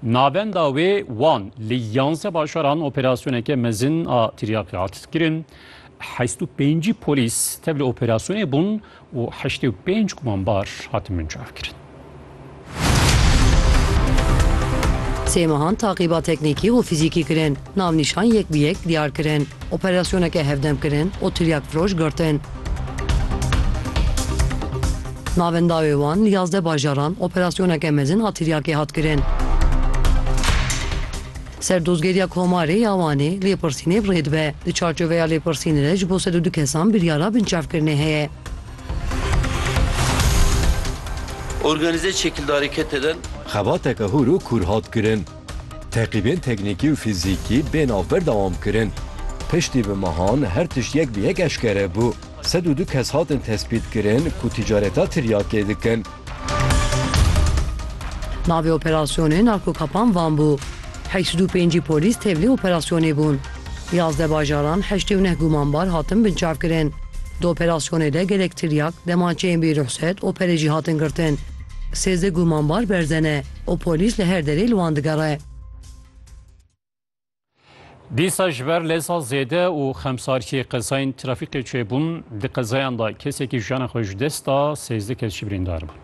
Navenda wê wan li yanze bajaran operasyoneke mezin a tiryakê hat kirin. Heşt û pêncî polîs tevli operasyonê bûn û heştê û pênc gumanbar hatin binçavkirin. Sê mehan taqîba teknîkî û fîzîkî kirin. Navnîşan yek bi yek diyar kirin, operasyoneke hevdem kirin û tiryakfiroş girtin. Navên dawê wan li yazdeh bajaran operasyoneke mezin a tiryakê hat kirin. Serdozgeriya Komarê ya Wanê lêpirsînê rê dibe. Di çarçoveya lêpirsînê de ji bo sed û du kesan biryara binçavkirinê heye. Organîze çekildarî kete dan. Xebateke hûr û kûr hat kirin. Teqîbên teknîkî û fîzîkî bê navber dewam kirin. Piştî bi mehan her tişt yek bi yek eşkere bû. Sed û du kes hatin tespîtkirin ku tîcareta tiryakê dikin. Navê operasyonê Narkokapan Van bû. Heşt û pêncî polîs tevlî operasyonê bûn. Yazdeh bajaran heştê û neh gumanbar hatin binçavkirin. Di operasyonê de gelek tiryak, demançeyên bîruhset, opere jî hatin girtin. Sêzdeh gumanbar berze ne. Û polîs li her derê li wan digere. Dîsa ji ber leza zêde û xemsarkê qezayên trafîkê çêbûn. Di qezayan de kesekî jiyana xwe ji dest da, sêzdeh kes jî birîndar bûn.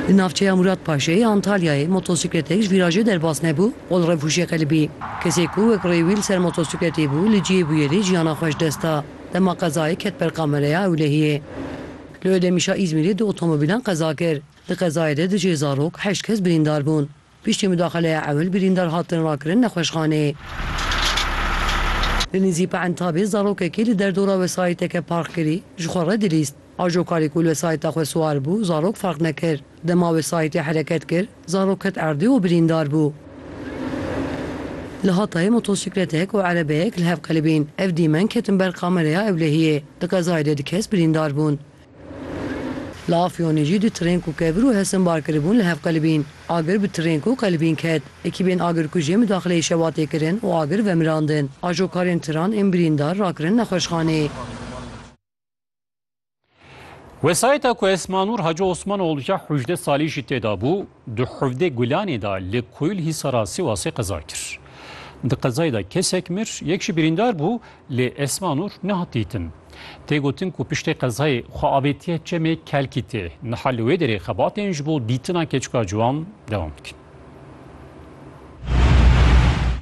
Di navçeya Mûrat Paşê yê Antalyayê motosîkletek ji vîrajê derbas nebû û li revûjê qelibî. Kesê ku wek rê wî li ser motosîkletê bû li cihê bûyerê jiyana xwe ji dest da. Dema qezayê ket ber kamereya ewlehiyê. Li Odemişa Îzmîrê du otomobîlan qeza kir. Di qezayê de di cihê zarok heşt kes birîndar bûn. Piştî mudaxeleya ewil birîndar hatin rakirin nexweşxaneyê. Li nêzî Peentabê zarokekî li derdora wesayîteke park kirî ji xwe re dilîst. Ajokarî ku li wesayîta xwe siwar bû zarok ferq nekir. Dema wesayîtê hereket kir, Zarok ket erdê û birîndar bû. Li Hatayê motosîkletek û erebeyek li hev qelibîn. Ev dîmen ketin ber kamereya ewlehiyê. Di qezayê de du kes birîndar bûn. Li Afyonê jî du tirên ku kevir û hesin bar kiribûn li hev qelibîn. Agir bi tirên ku qelibîn ket. Ekîbên agirkujê midaxileyê şewatê kirin û agir vemirandin. Ajokarên tiran ên birîndar rakirin nexweşxaneyê. Wesayeta ku Esmanur Hacı Osmanoğlu ya hujde salî jî tê de bû, di Huvdê Gulanê de li Koyul Hîsara Sîwasê qeza kir. Di qezayê de kesek mir, yek jî birîndar bû lê Esmanur nehat dîtin. Tê gotin ku piştê qezayê xwe avêtiye çemê Kelkîtê. Niha li wê derê xebatên ji bo dîtina keçika ciwan dewam dikin.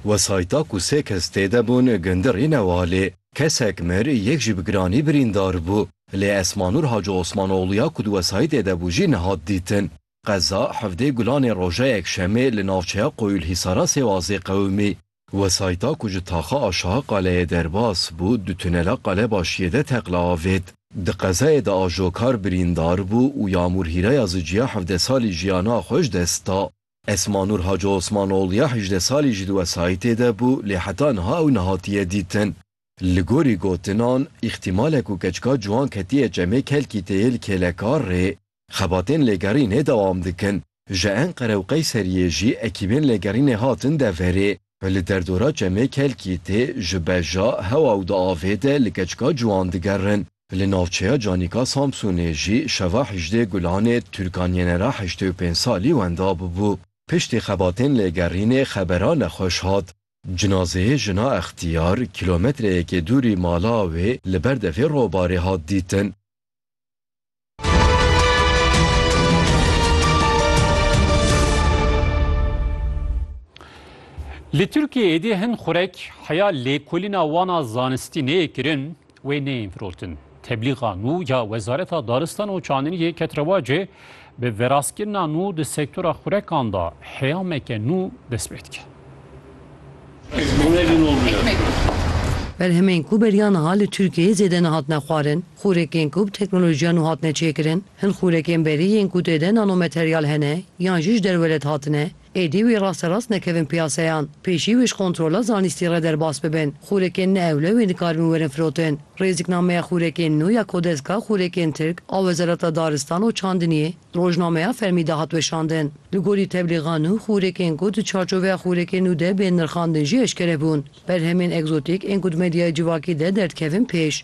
Wesayeta ku sê kes tê de bûn gundirî ne wa lê Kesek mir, yek jî bi giranî birîndar bû. Lê Esmanûr Hacî Osmanoglû ya ku di wesayîtê de bû jî nehat dîtin. Qeza Hevdê Gulanê roja Yekşemê li navçeya Qoyûlhîsara Sêwazê qewimî. Wesayîta ku ji taxa aşaha qaleyê derbas bû du tunela qale başiyê de teqla avêt. Di qezayê de ajokar birîndar bû û Yamûr Hîraya Ziciya hevdeh salî jiyana xwe ji dest da. Esma Nur Hacı Osmanoğlu ya hejdeh salî ji di wesayîtê de bû lê heta niha ew nehatiye dîtin. Li gorî gotinan, îxtîmale ku keçika ciwan ketiye çemê kelkî tê yê li kêlekar rê. Xebatên lêgerînê dewam dikin. Ji Enqere û Qeyseriyê jî ekîbên lêgerînê hatin deverê. Bi li derdora çemê kelkî tê ji beja hewa û di avê de li keçika ciwan digerin. Li navçeya Canika Samsûnê jî şeva Hîjdê Gulanê Tûrkanyenera heştê û pênc salî wenda bûbû. Piştî xebatên lêgerînê xebera nexweş hat. Cinazeyê jina Extiyar kîlometreyekê dûrî mala wê li ber devê robarê hat dîtin. Li Tirkiyeyê dê hin xurek heya lêkolîna wana zanistî neyê kirin wê neyên firotin. Teblîxa nû ya Wezareta Daristan û Çandiniyê ket rewacê bi veraskirina nû di sektora xurekan da heyameke nû dest pê dike. Berhemên ku beriya niha li Tirkiyeyê zêde nehatine xwarin. Xûrekên ku bi teknolojiya nû hatine çêkirin, hin xûrekên berî yên ku tê de nanomateryal hene yan jî ji derve led hatine, êdî wê rasterast nekevin piyaseyan, pêşî wê ji kontrola zanîstî re derbas bibin. Xûrekên ne ewle wê dikaribin werin firotin. Rêziknameya xûrekên nû ya Kodeska Xûrekên Tirk a Wezareta Daristan û Çandiniyê di rojnameya fermî de hat weşandin. Li gorî teblîxa nû, xûrekên ku di çarçoveya xûrekên nû de bên nirxandin jî eşkere bûn. Berhemên egzotîk ên ku di medyaya civakî de derdikevin pêş.